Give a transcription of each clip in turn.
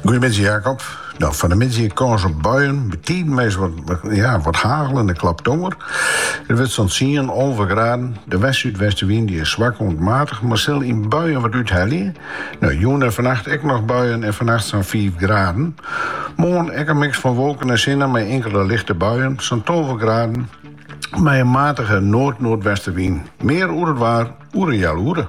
Goeiemiddei Jacob. Nou, fan de middei kâns op buien, betiden mei wat hagel en in klap tonger. It wurdt sa'n tsien, alve graden. De west-súdwestenwyn die is swak oant maatich, mar sil yn buien wat úthelje. Nou, jûn en fannacht ek noch buien en fannacht sa'n fiif graden. Moarn ek in miks fan wolken en sinne mei inkele lichte buien, sa'n tolve graden, mei in matige noard-noardwestenwyn. Mear oer it waar oer in healoere.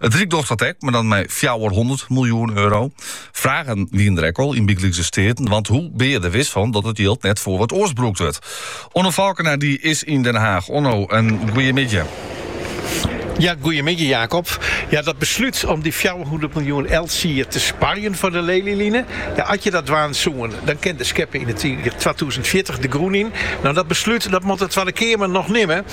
It Ryk docht dat ek, mar dan mei fjouwerhûndert miljoen euro. Fragen wienen der ek al yn Provinsjale Steaten, want hoe bin je der wis fan dat it jild net foar wat oars brûkt wurdt? Onno Falkena dy is yn Den Haag. Onno, in goeiemiddei. Ja, goeiemiddei Jacob. Ja, dat beslút om dy fjouwerhûndert miljoen elts jier te sparjen foar de Lelyline, ja, as je dat dwaan soene, dan kin de skeppe yn it jier twatûzen fjirtich de grûn yn. No, dat beslút dat moat de Twadde Keamer noch nimme.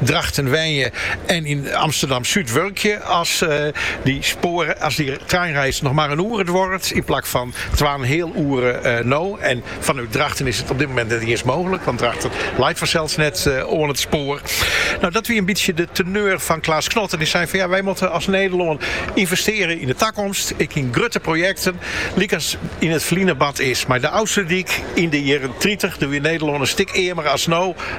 Drachten wenje en yn Amsterdam-Súd wurkje as dy treinreis noch mar in oere duorret yn plak fan twa en in heal oere no. En fanút Drachten is it op dit moment net iens mooglik, want Drachten leit fansels net oan it spoar. No, dat wie in bytsje de teneur fan Klaas Knot en dy sei fan ja, wy moatte as Nederlân ynvestearje yn de takomst, ek yn grutte projekten, lykas yn it ferline bard is mei de Ofslútdyk yn de jierren tritich. Doe wie Nederlân in stik earmer as no.